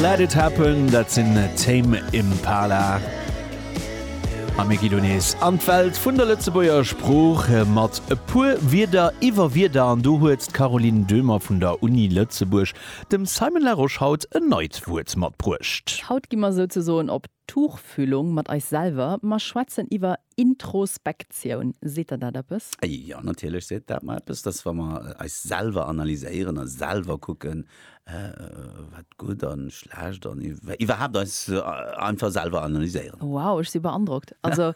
Let it happen, dat sinn Tame Impala. A mir ginn nees an d'Welt vun der Lëtzebuerger Sprooch mat e puer Wierder iwwer Wierder. An do huet d'Caroline Döhmer vun der Uni Lëtzebuerg dem Simon Larosche haut en neit Wuert matbruecht. Haut gi mer souzesoen op Tuchfühlung mat eis selwer. Mer schwätzen iwwer Introspektioun, seet der dat eppes? Jo, natierlech seet dat mer eppes, dass wa mer eis selwer analyséieren a selwer kucken, wat gutt a schlecht an iwwerhaapt eis einfach selwer analyséieren. Wow, ech si beandrockt. Also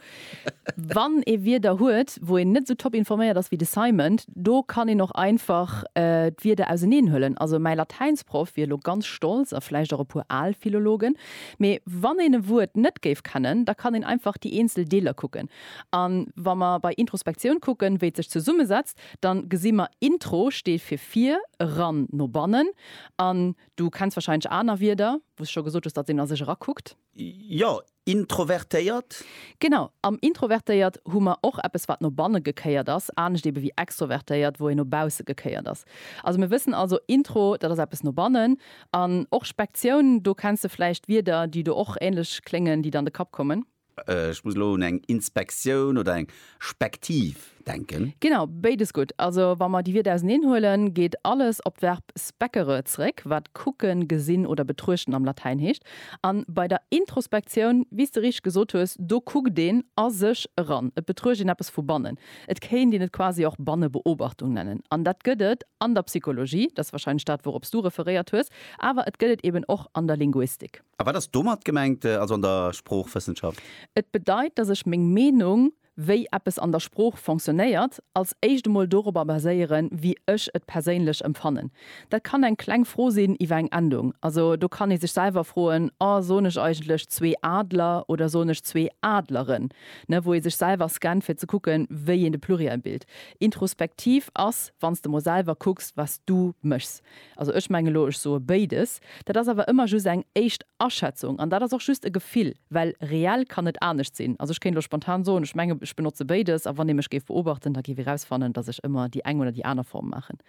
wann ee Wierder huet, wou een net esou top informéiert ass wéi de Simon, do kann een och einfach d'Wierder auseneen huelen. Also mäi Latäinsproff wier elo ganz stolz, a vläicht och e puer al Philologen, Mee wann een e Wuert net géif kennen, da kann een einfach déi eenzel Deeler kucken. A wa mer bei Introspektioun kucken, wéi et sech zesummesetzt, da gesi mer, Intro steet fir vir, eran, no bannen. An du kenns warscheinlech aner Wierder, wou s de scho gesot hues, datt een a sech erakuckt. Jo, introvertéiert. Genau, am introvertéiert hu mer och eppes, wat no banne gekéiert ass, anescht ebe wéi extrovertéiert, wou een no bausse gekéiert ass. Also mir wëssen also, Intro, dat ass eppes no bannen. An och Spektioun, do kenns de vläicht Wierder, déi do och ähnlech kléngen, déi dann de Kapp kommen. Ech muss elo un eng Inspektioun oder eng Spektiv denken. Genau, béides gutt. Also wa mer déi Wierder auseneen huelen, geet alles op d'Verb speccere zeréck, wat kucken, gesinn oder betruechten am Latäin heescht. A bei der Introspektioun, wéi s de richtig gesot hues, do kuckt een a sech eran, et betruecht een eppes vu bannen. Et kéint een et quasi och Bannebeobachtung nennen. An dat gëtt et an der Psychologie, dat ass warscheinlech dat, wourop s du referéiert hues, awer et gëtt et eeben och an der Linguistik. A wat ass domat gemengt, also an der Sproochwëssenschaft? Et bedeit, datt ech meng Meenung, wéi eppes an der Sprooch fonctionnéiert, als éischt emol dorobber baséieren, wéi ech et perséinlech empfannen. Dat kann eng kleng Fro sinn iwwer eng Endung. Also do kann ee sech selwer froen, Oh, soen ech eigentlech zwee Adler oder soen ech zwee Adleren? ne, wou ee sech selwer scannt fir ze kucken, wéi een de Pluriel bilt. Introspektiv ass, wann s de mol selwer kucks, wat s du méchs. Also ech menge lo, ech soe béides. Dat ass awer ëmmer just eng éischt Aschätzung an dat ass och just e Gefill, well reell kann net anescht sinn. Also ech kéint lo spontan soen, ech menge ech benotze béides a wann ee mech géif beobachten, da géif ee rausfannen, datt ech ëmmer déi eng oder déi aner Form maachen.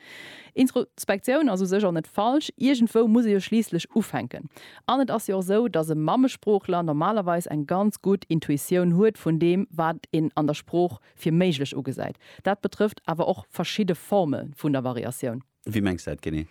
Introspektioun ass u sech och net falsch, iergendwou muss ee jo schliisslech ufänken. An et ass jo och esou, dass e Mammesproochler normalerweis eng ganz gutt Intuitioun huet vun deem, wat een an der Sprooch fir méiglech ugesäit. Dat betrëfft awer och verschidde Forme vun der Variatioun. Wéi mengs de dat genee?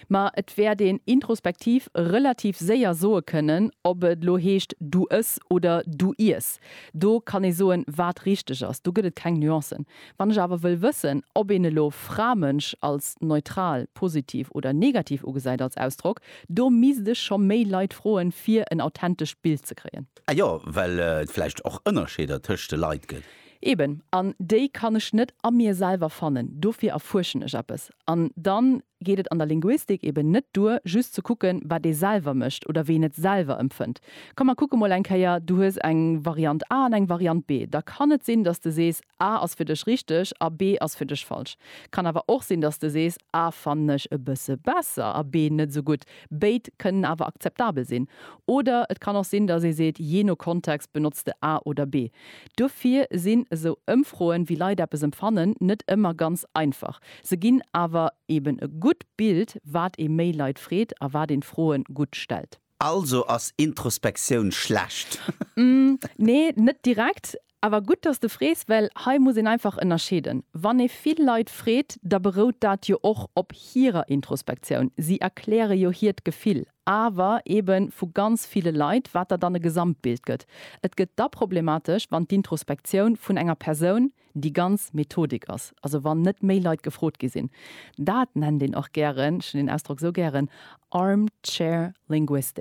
Ma et wäert een introspektiv relativ séier soe kënnen, ob et elo heescht du ëss oder du iess. Do kann ee soen, wat richteg ass. Do gëtt et keng Nuancen. Wann ech awer wëll wëssen, ob een elo Fra-Mënsch als neutral, positiv oder negativ ugesäit als Ausdrock, do misst ech scho méi Leit froen, fir en authentescht Bild ze kréien. Ah jo, well et vläicht och Ënnerscheeder tëscht de Leit gëtt. Eben, an déi kann ech net a mir selwer fannen. Dofir erfuerschen ech eppes. An dann geet et an der Linguistik eben net duer, just ze kucken, wat ee selwer mécht oder wéi een et selwer empfënnt. Komm, mer kucke mol eng Kéier, du hues eng Variant A an eng Variant B. Da kann et sinn, datt de sees, A ass fir dech richteg a B ass fir dech falsch. Kann awer och sinn, datt de sees, A fannen ech e bësse besser a B net esou gutt. Béid kënnen awer akzeptabel sinn. Oder et kann och sinn, datt ee seet, jee no Kontext benotzt de A oder B. Duerfir sinn esou Ëmfroen, wéi Leit eppes empfannen, net ëmmer ganz einfach. Se ginn awer eben e gutt Bild, wat ee méi Leit freet a wat een d'Froen gutt stellt. Also ass Introspektioun schlecht? Nee, net direkt. Awer gutt, dass de frees, well hei muss een einfach ënnerscheeden. Wann ee vill Leit freet, da berout dat jo och op hirer Introspektioun. Si erkläre jo hiert Gefill. awer ebe vu ganz ville Leit, wat der dann e Gesamtbild gëtt. Et gëtt da problematesch, wann d'Introspektioun vun enger Persoun déi ganz Methodik ass, also wann net méi Leit gefrot gi sinn. Dat nennt een och gären, ech hunn deen Ausdrock esou gären, Armchair Linguistics.